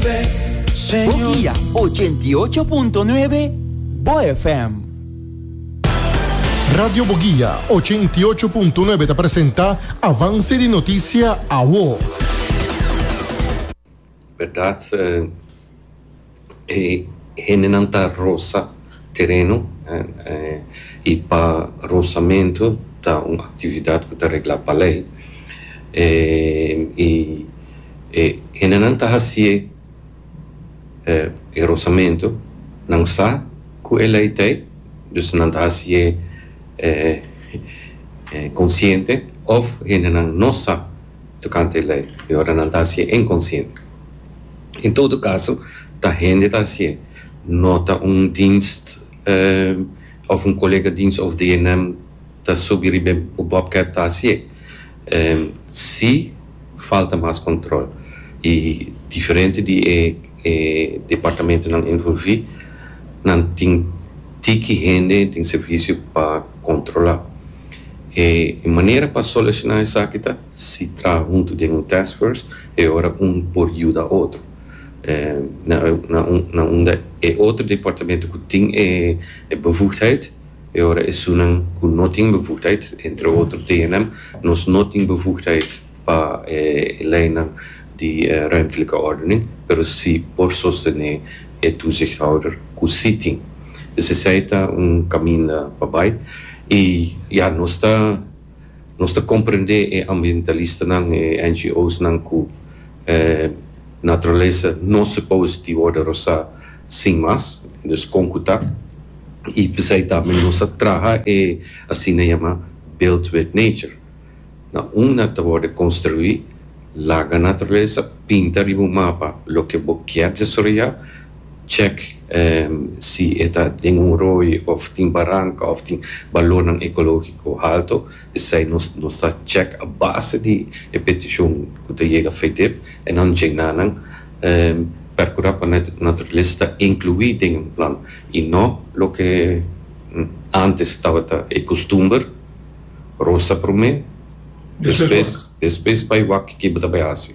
Bogia ochenta i ocho punto nuebe, bo FM. Radio Bogia ochenta i ocho punto nuebe ta presenta Avance di Noticia Awo. Berdad, e hendenan ta rosa. Tereno i pa rosamentu ta un aktividat ku ta reglá pa lei. I e hendenan ta hasi e rosamentu, nan sa ku e lei ta ei, dus nan ta hasi e konsiente òf hendenan no sa tokante e lei i ora nan ta hasi e inkonsiente. En todo kaso ta hende ta hasi. No ta un dienst of un colega dienst of de enem ta subi riba e bobcat ta hacié. Si falta mas control y diferente di e departamentonan envolvi nan tin tiki hende den servicio pa controla. E manera pa soluciona esaki ta si traha hunto den un task force e ora un por yuda otro. na unda e otro departamento cu tin e bevoegdheid y ora esunnan cu no tin bevoegdheid, entre otro DNM, nos no tin bevoegdheid pa e leynan di ruimtelijke ordening, pero si por sostene e toezichthouder cu si tin. Dus esey ta un caminda pa bay y ya nos ta. Nos ta komprendé e ambientalistanan, e NGOsnan ku e naturalesa no supos di wòrdu rosá sin mas, dus kon ku ta, i p'esei ta mi nos ta traha e asina yama build with nature. Na unda ta wòrdu konstruí, laga naturalesa, pinta riba un mapa loke bo kier desaroyá, Check si e ta den un rooi of tin baranka of tin balornan ekologiko halto, esei nos ta check a base di e petishon ku ta yega Fedip e nan djena nan perkura pa naturalesa ta inkluí den un plan i no loke antes tabata e kustumber, rosa promé, despues despues bai wak ke bo ta bai hasi.